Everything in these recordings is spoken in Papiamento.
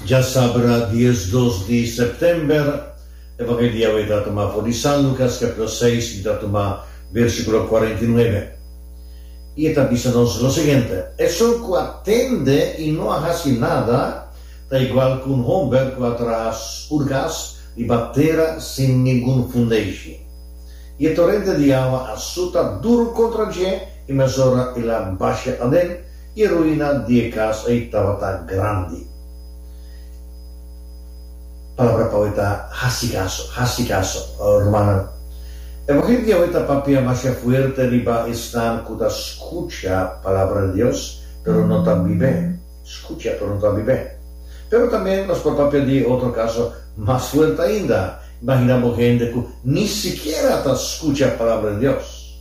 Dja sabra dies dos di September, e tabata e dia awey ta tuma for di San Lucas capitulo seis y ta tuma versiculo cuarenta y nuebe. Y e ta bisa nos lo siguiente, Esun cu a tende y no a haci nada ta igual cu un homber cu a traha sur cas riba tera sin ningun fundeishi. Y e torente di awa a suta duru contra dje y mesora el a basha aden, E ruina di e cas ei tabata grandi. Palabra pa hoy ta haci caso, haci caso, rumannan. Evangelio di hoy ta papia masha fuerte riba esnan cu ta scucha Palabra di Dios, pero no ta bib'é. Scucha, pero no ta bib'é. Pero tambe nos por papia di e otro caso mas fuerte ainda. Imagina bo hende cu ni sikiera ta scucha Palabra di Dios.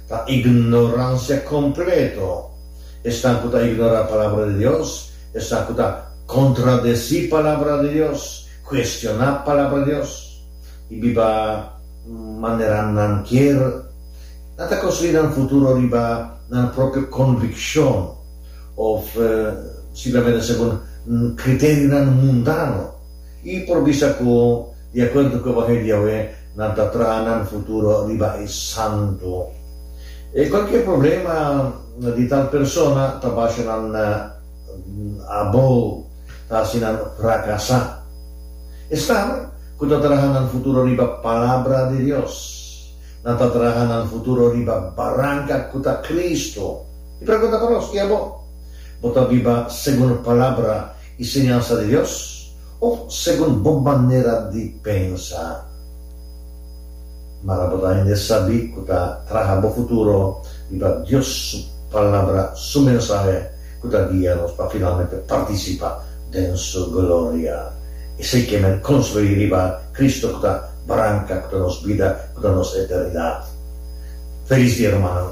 Ta ignorancia completo. Esnan cu ta ignora Palabra di Dios, esnan cu ta contradeci Palabra di Dios, cuestiona Palabra di Dios y biba manera nan kier, nan ta construi nan futuro riba nan propio conviccion of simplemente segun criteriunan mundano. i por bisa ku di akuerdo ku evangelio di Yahweh nan ta traha nan futuro riba e santu. E kualkier problema di tal persona ta basha nan abo, ta hasi nan frakasá. Esnan ku ta traha nan futuro riba palabra di Dios, nan ta traha nan futuro riba baranka ku ta Kristu. Mi pregunta pa nos, i abo? Bo ta biba segun e palabra? i siñansa di Dios òf segun bo manera di pensa. Mara bo ta hende sabí ku ta traha bo futuro i pa Dios su Palabra, su mensahe ku ta guia nos pa finalmente partisipa den su gloria. Esei ke men konstruí riba Kristu ku ta branka, ku ta nos bida, ku ta nos eternidat. Felis dia, rumannan!